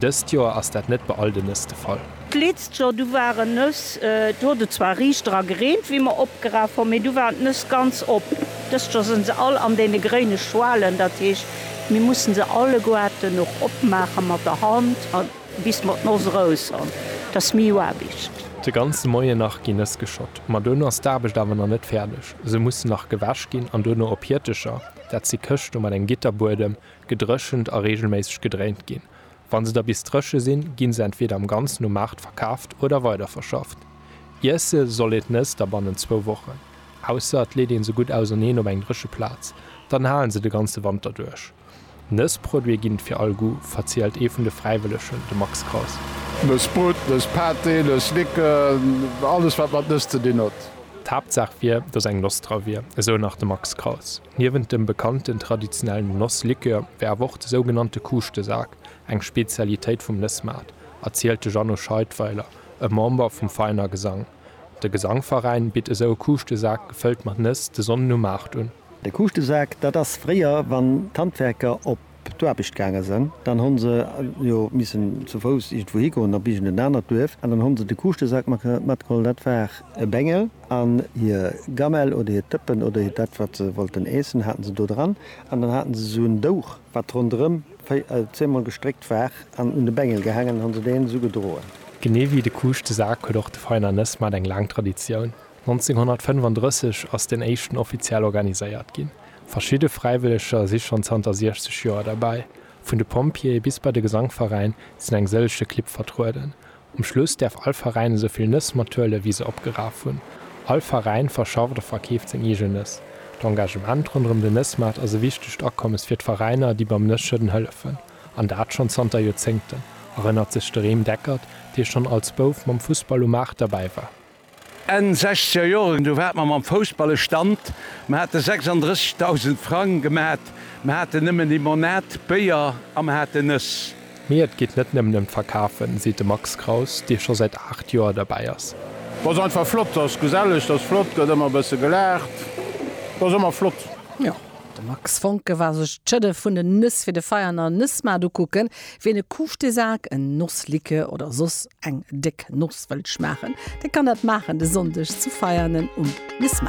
Dëst Joer ass dat net bei all de Nëss de Fall. D'leetst Joer, du waren Nëss, do huet et zwar riicht dra gereent wéi mer opgeraf hun, mee du waren d'Nëss ganz op. Dëst Joer sen se all an deene gréine Schwalen, dat heescht mir mussen se alleguerten och opmaachen mat der Hand an bis mer d'Noss rous han, dass miu Aarbicht. De ganze Moien nach gin Nëss geschott, ma duerno ass d'Aarbecht awer nach net färdeg, se mussen nach gewäsch gin an duerno op Hiertecher, dat si Këschte mat engem Gitterbuedem, gedréchent a reegelméisseg gedréint ginn. Wa se da bis dréche sinn, gi se entweeder am Ganzen um Maart verkaaft oder weiderverschafft. Iesse soll een d'Nëss da bannent zwou Wochen, ausser et leet een se gutt auserneen op eng dréche Plaz, dann halen se de ganze Wanter duerch. Nëssproduite ginn et fir all Goût, verzielt ee vun de Fräiwëllegen, de Max Kraus. Nëssbrot, Nësspâté, Nësslicken, alles wat mat Nëss ze dinn huet. D'Haaptsaach wier, datt eng Noss dra wier, esou nach de Max Kraus. Niewent dem bekannten traditionellen Nosslikör wär awer och de sougenannte Kuuschtesak eng Spezialitéit vum Nëssmaart, erzielt de Jeannot Scheidweiler, e Member vum Veiner Gesang. De Gesangveräin bitt esou e Kuuschtesak gefëllt mat Nëss de Sonnden um Maart un. De Kuuschtesak, dat ass fréier, wann d'Handwerker op d'Aarbecht gaange sen, dann han se jo missen zu Fouss irgendwou higoen a bis un en anert Duerf an dann han se de Kuuschtesak matgeholl, dat war e Bengel, an hir Gamell oder hiert Dëppen oder hiert dat wat se wollten äessen haten se do dran an dann haten se esou en Douch wat ronderem zehnmol gestréckt war an un de Bengel gehaangen, han se deen esou gedroen. Genee wéi de Kuuschtesak huet och de Feiner Nëss Maart eng laang Traditioun. 1935 ass den éischten offiziell organiséiert ginn. Verschidde Fräiwëlleger si schonn zanter 60 Joer derbäi. Vun de Pompjeeë bis bei de Gesangveräin sinn eng sëllege Clibb vertrueden. Um Schluss däerf all Veräin esou vill Nëss mathuelen, wéi se opgeraf hunn. All Veräin verschafft a verkeeft seng eegen Nëss. D'Engagement ronderëm den Nëssmaart ass e wichtegt Akommes fir d'Veräiner, déi beim Nësschëdden hëllefen, an dat schonn zanter Joerzéngten, erënnert sech de Rem Deckert, dee schonn als Bouf mam Fussball um Maart derbäi war. Enn sechzeger Joren, du waart mer mam Foussball e Stand, mer hate 36.000 Frang gemat, mer haten nëmmen Limonad, Béier a mer hate Nëss. Mee et geet net nëmmen ëm d'Verkafen, seet de Max Kraus, dee scho säit 8 Joer derbäi ass. Et ass einfach flott, et ass geselleg, et ass flott, gëtt ëmmer e bësse gelaacht, et ass ëmmer flott. De Max Foncke war sech d'Schëdde vun den Nëss fir de Veianer Nëssmaart ukucken. Wien e Couche de Sac, en Nossliquë oder soss eng déck Noss wëllt schmaachen, dee kann dat maachen de Sonndeg zu Veianen um Nëssmaart.